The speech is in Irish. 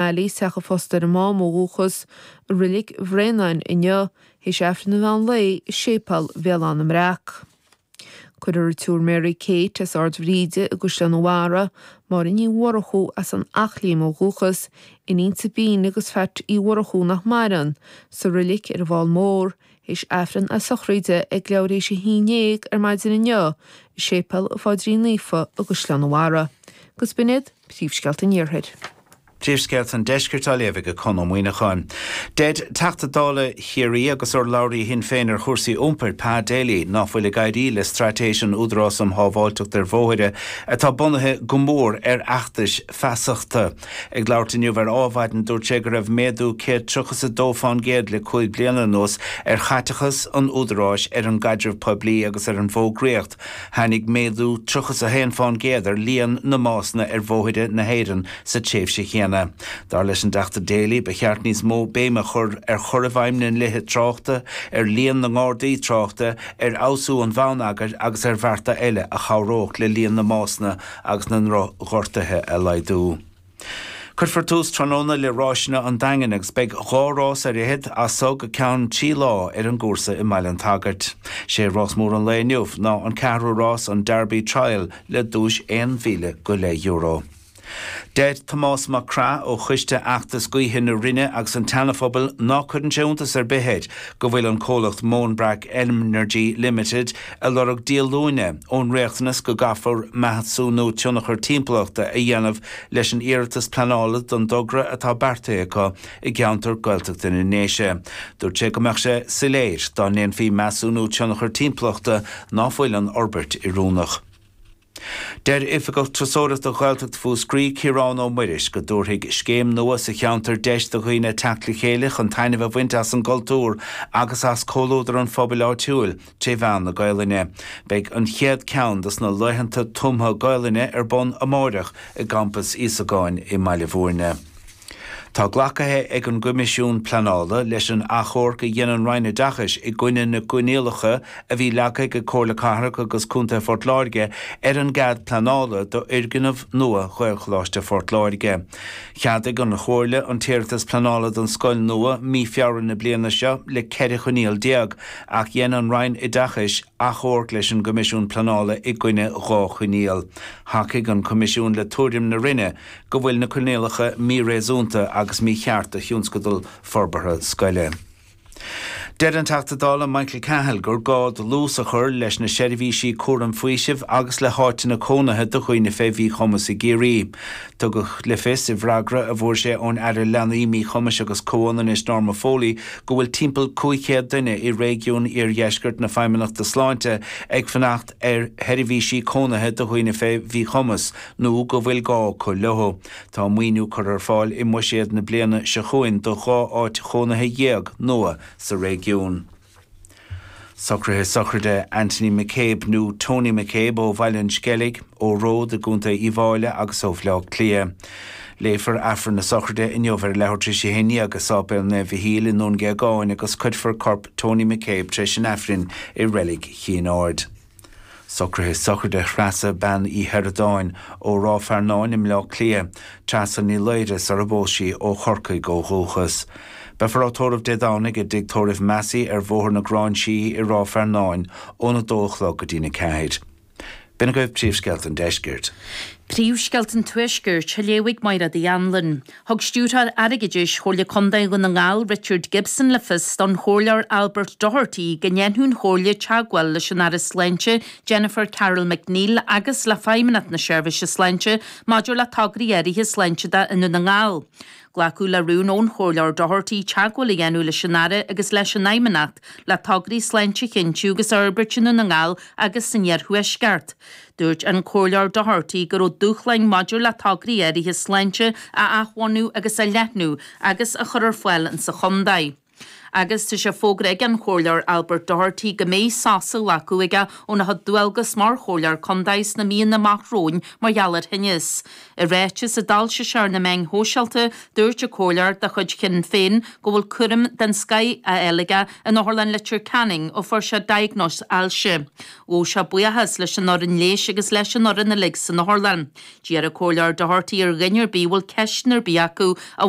Ailí, Teach a' Phosta ar a' Mám ó dhúchas, i Reilig Bhréanainn inniu, théis Aifreann an mheán lae i Séipéal Bhéal Átha na mBreac. Cuirfear a' tSiúr Mary Kate as Ard Bhríde i gCaisleán a' Bharra, Máire Ní Mhurchú as an Eachléim ó dhúchas, iníon Sabine agus Pheait Uí Mhurchú nach maireann, sa reilig ar an bhFál Mór, théis Aifreann na Sochraide ag leathuair théis a haon déag ar maidin inniu i Séipéal a' Phaidrín Naofa i gCaisleán a' Bharra. Agus b'in iad Príomhscéalta an Iarthair. Príomhscéalta an Deiscirt á léamh ag Conn Ó Muíneacháin. Deir Teachta Dála Chiarraí agus urlabhraí Shinn Féin ar chúrsaí iompair, Pa Daly, nach bhfuil ag éirí le straitéis an Údaráis um Shábháilteacht ar Bhóithre atá bunaithe go mór ar fheachtais feasachta. Ag labhairt inniu ar Adhmhaidin dúirt sé go raibh méadú 132% le cúig bliana anuas ar chaiteachas an Údaráis ar an gcaidreamh poiblí agus ar an bhfógraíocht, Tháinig méadú 31% ar líon na mbásanna ar bhóithre na hÉireann sa tréimhse chéanna. Dar leis an dTeachta Daly, ba cheart níos mó béime a chur ar chur i bhfeidhm na ndlíthe tráchta, ar líon na nGardaí tráchta, ar fheabhsú an bhonneagair agus ar bhearta eile a chabhródh le líon na mbásanna agus na ndroch-ghortuithe a laghdú. Cuirfear tús tráthnóna le Ráiseanna an Daingin agus beidh dhá rás ar fhichead as so go ceann trí lá ar an gcúrsa i mBaile an tSagairt. 'Sé rás mór an lae inniu ná an ceathrú rás, an Derby Trial, le duais aon mhíle go leith euro. Deir Tomás Mac Craith ó choiste fheachtais gaoithe na Rinne agus an tSeanaphobail ná cuireann sé iontas ar bith air go bhfuil an comhlacht Mownbrack Energy Limited, ag lorg díolúine ón riachtanas go gcaithfear measúnú tionchar timpeallachta a dhéanamh leis an iarratas pleanála don dtogra atá beartaithe acu i gceantar Gaeltachta na nDéise. Dúirt sé go mbeadh sé soiléir dá ndéanfaí measúnú tionchar timpeallachta ná fuil an fhorbairt oiriúnach. Deir Oifigeach Turasóireachta Ghaeltacht Mhúscraí, Ciarán Ó Muiris, go dtabharfaidh scéim nua sa cheantar deis do dhaoine teacht le chéile chun taitneamh a bhaint as an gcultúr agus as comhluadar an phobail áitiúil tré mheán na Gaelainne. Beidh an chéad ceann dos na Laethanta Tumtha Gaelainne ar bun amáireach i gCampas Íosagáin i mBaile Mhúirne. Tá glacaithe ag an gCoimisiún Pleanála leis an achomharc a dhein an Roinn Oideachais i gcoinne na gcoinníollacha a bhí leagtha ag Comhairle Cathrach agus Contae Phort Láirge ar an gcead pleanála d'fhoirgneamh nua Ghaelcholáiste Phort Láirge. Cheadaigh an Chomhairle an t-iarratas pleanála don scoil nua mí Feabhra na bliana seo le 14 choinníoll ach dhein an Roinn Oideachais achomharc leis an gCoimisiún Pleanála i gcoinne dhá choinníoll. Thacaigh an Coimisiún le tuairim na Roinne, go bhfuil na coinníollacha míréasúnta agus mícheart do thionscadal forbartha scoile. Deir an Teachta Dála Michael Cahill gur gá dlús a chur leis na seirbhísí cúraim faoisimh agus le háiteanna cónaithe do dhaoine fé mhíchumas i gCiarraí. Tugadh le fios i bhfreagra a fuair sé ón Aire Leanaí, Míchumais agus Comhionannais Norma Foley go bhfuil timpeall 500 duine i réigiún iardheiscirt na Feidhmeannachta Sláinte ag fanacht ar sheirbhísí cónaithe do dhaoine fé mhíchumas nó go bhfuil gá acu leo. Tá maoiniú curtha ar fáil i mbuiséad na bliana seo chugainn do dhá áit chónaithe dhéag nua sa réigiún. Socruithe Sochraide Anthony McCabe, nó Tony McCabe, ó Bhaile an Sceilg, ó Ród, i gContae Uíbh Fhailí agus ó Bhaile Átha Cliath. Léifear Aifreann na Sochraide inniu ar a leathuair tar éis a haon déag i Sáipéal Naomh Mhichíl i nDún Géagáin agus cuirfear corp Tony McCabe tar éis an Aifrinn i Reilig Chinn Aird. Socruithe Sochraide Threasa Bean Uí Shioradáin ó Ráth Fearnáin i mBleá Cliath, Treasa Ní Laoire sar a bpós sí, ó Chorcaigh ó dhúchas. Beifear á tórramh Dé Domhnaigh i dTigh Tórraimh Massey ar Bhóthar na Gráinsí i Ráth Fearnáin óna dó a chlog go dtí'n a ceathair. B'in agaibh príomhscéalta an deiscirt. Príomhscéalta an tuaiscirt, á léamh ag Máiréad Uí Annluain. Thug Stiúrthóir Airgeadais Chomhairle Contae Dhún na nGall Richard Gibson le fios don Chomhairleoir Albert Doherty go ndéanfadh an Chomhairle teagmháil leis an Aire Sláinte Jennifer Carroll MacNeill agus le Feidhmeannacht na Seirbhíse Sláinte maidir le tograí áirithe sláinte i nDún na nGall. Glacadh le rún ón Chomhairleoir Doherty teagmháil a dhéanamh leis an Aire agus leis an Fheidhmeannacht le tograí sláinte a chinntiú agus a fhorbairt i nDún na nGall agus san iarthuaisceart. Dúirt an Comhairleoir Doherty go raibh dúshláin maidir le tograí áirithe sláinte a athbhunú agus a leathnú agus a chur ar fáil sa chontae. Agus tá sé fógartha ag an Chomhairleoir Albert Doherty go mbeidh sos á ghlacadh aige óna chuid dualgas mar Chomhairleoir Contae sna míonna amach romhainn mar gheall ar thinneas. I ráiteas a d'fhoilsigh sé ar na meáin shóisialta, dúirt an Comhairleoir de chuid Shinn Féin go bhfuil cúram den scoth á fháil aige in Otharlann Leitir Ceanainn ó fuair sé diagnóis ailse. Ghabh sé buíochas leis an fhoireann leighis agus leis an fhoireann uilig san otharlann. D'iarr an Comhairleoir Doherty ar dhuine ar bith a bhfuil ceisteanna ar bith acu a